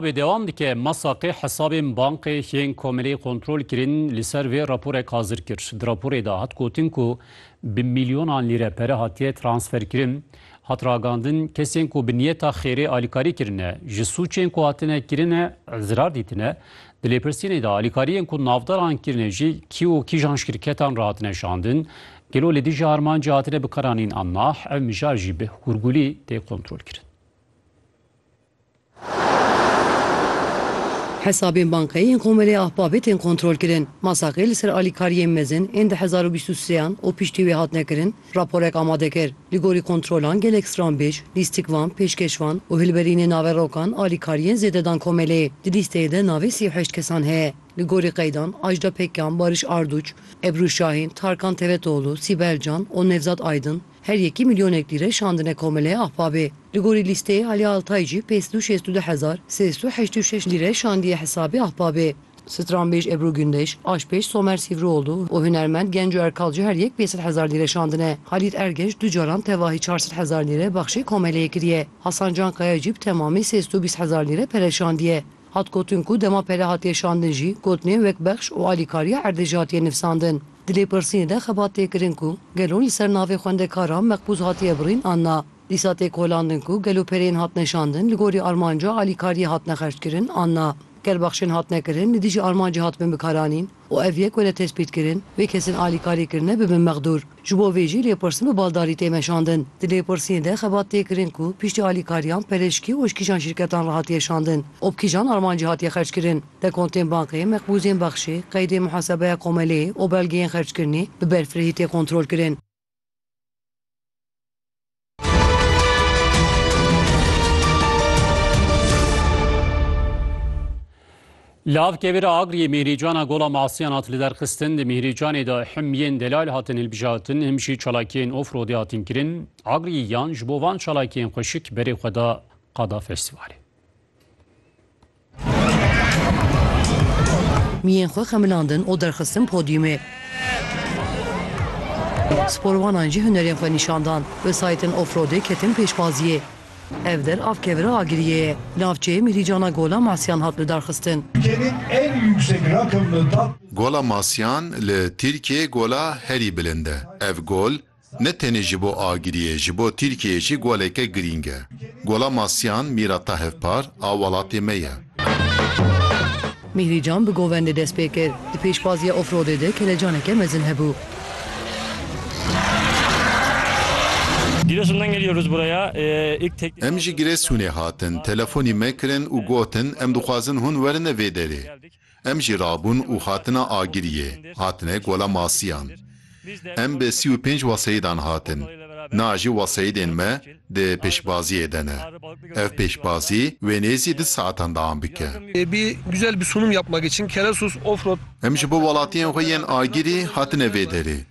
Wê dewam dike, Ma Saqê hesabên bankê yên komelê kontrol kirin, li ser vê raporek hazir kir. Di raporê de hat gotin ku bi milyonan lîre pere hatiye transferkirin. Hat ragandin kesên ku bi niyeta xêrê alîkarî kirine, ji sûcên ku hatine kirin e zirar dîtine. Di lêpirsînê de alîkariyên ku navdaran kirine jî kî û kîjan ji şirketan re hatine şandin, gelo li dijî armancê hatine bikaranîn an nah, ev mijar jî bi hûrgûlî tê kontrolkirin. Hesabên bankayî yên Komelê Ahbabê tên kontrolkirin. Masakê li ser alîkariyên mezin ên di hezar û bîst û sêan û piştî wê hatine kirin raporek amade kir. Li gorî kontrolan gelek stranbêj, lîstikvan, pêşkêşvan û hilberînên naverokan alîkariyên zêde dan Komelê. Di lîsteyê de navê sî û heşt kesan heye. Li gorî qeydan Ajda Pekkan, Barış Arduç, Ebru Şahîn, Tarkan Tevetoğlu, Sibel Can û Nevzat Aydın, Her yekî milyonek lîre şandine Komeleyê Ahbabê. Li gorî lîsteyê Alî Altay jî pênc sed û şêst û du hezar sê sed û heşt û şeş lîre şandiye hesabê Ahbabê. Stranbêj Ebru Gundeş, aşpêj Somer Sîvrioglu û hunermend Genco Erkal jî her yek pênc sed hezar lîre şandine. Halît Ergenç du caran tevahî çar sed hezar lîre baxşê Komeleyê kiriye. Hasan Cankaya jî bi temamî sê sed û bîst hezar lîre pere şandiye. Hat gotin ku dema pere hatiye şandin jî gotinên wek bexş û alîkariya erdê jî hatiye nivsandin. Di lêpirsînê de xebat tê kirin ku gelo li ser navê xwendekaran meqbûz hatiye birîn an na. Dîsa tê kolandin ku gelo pereyên hatine şandin li gorî armanca alîkariyê hatine xerckirin an na. Ger bexşên hatine kirin li dijî armancê hatibin bikaranîn. û ev yek were tespîtkirin, vê kesên alîkarî kirine bibin mexdûr. Ji bo vê jî lêpirsîn bi baldarî tê meşandin. Di lêpirsînê de xebat tê kirin ku piştî alîkariyan perişkî û ji kîjan şîrketan re hatiye şandin û bi kîjan armancî hatiye xerckirin. Dekontên bankê, mekbûzên bexşê, qeydên muhasebeya komeleyê û belgeyên xerckirinê bi berfirehî tê kontrolkirin. Lav kevira agriyê Mîhrîcana Gola Masiyan hat liderxistin di Mîhrîcanê de him yên delal hatin hilbijartin him jî çalakiyên ofrodê hatin kirin. Agriyê yan ji bo van çalakiyên xweşik berê xwe da Qada Festîvalê. Miyên xwe xemilandin û derxistin podyûmê. Sporwanan jî hunerên xwe nîşan dan. Wesayîtên Ofrodê ketin pêşbaziyê. Ev der av kevira Agiriyê ye. Li navçeyê Mîhrîcana Gola Masyan hat lidarxistin. Gola Masyan li Tirkiyeyê gola herî bilind e. Ev gol Ne tenê ji bo Agiriyê, ji bo Tirkiyeyê jî goleke girîng e. Gola Masyan, mîrata hevpar, a welatê me ye. Mîhrîcan bi govendê dest pê kir. Di pêşbaziya ofrodê de kelecaneke mezin hebû. Giresun'dan geliyoruz buraya. İlk tek. Em ji Giresunê hatin. Telefonî me kirin û gotin em dixwazin hûn werin vê derê. Em jî rabûn û hatine Agiriyê, hatine Gola Masiyan. Em bi sî û pênc weseyîdan hatin. Na jî weseyîdên me di pêşbaziyê de ne. Ev pêşbazî wê nêzî du saetan deam bike. Em ji bo welatiyên xwe yên Agirî hatine vê derê.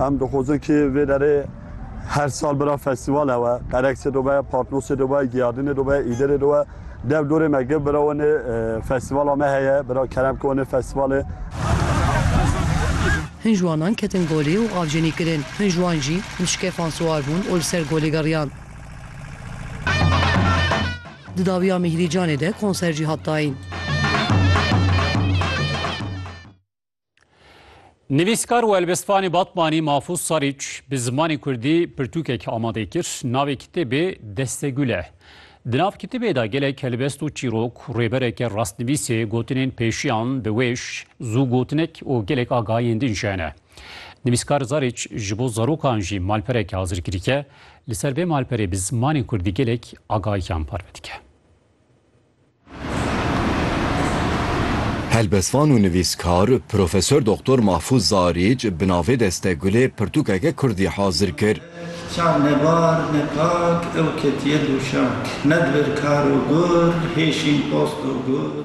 Em dixwazin kê vê derê her sal bira festîvalê we, qereksê de be, patnosê de be, giyadinê de be, îdirê de be, dev dorê me giv bira wenê festîvala me heye, bira kerem ke wenê festîvalê. Hin ji wanan ketin golê û avcênî kirin. Hin ji wan jî bi şikefan siwar bûn û li ser golê geriyan. Di dawiya Mîhrî Canê de konser jî hat dayîn. Nivîskar û elbestvanê Batmanî Mafûz Sarîç bi zimanê Kurdî pirtûkek amadê kir, navê kitêbê Destegul e. Di nav kitêbê de gelek helbest û çîrok, rêbereke rastnivîsê, gotinên pêşiyan bi wêş, zû gotinek û gelek agahiyên din jî hene. Nivîskar Zarîç ji bo zarokan jî malpereke hazirkirîke, li ser vê malperê bi zimanê Kurdî gelek agahiyan parve dike. Helbestvan û nivîskar Profesor Doktor Mahfûz Zaric bi navê Deste Gulê pirtûkeke kurdî hazir kir. Çav ne bar ne pak ew ketiye dûşak. Ne divir kar û gur hêşîn post û gur.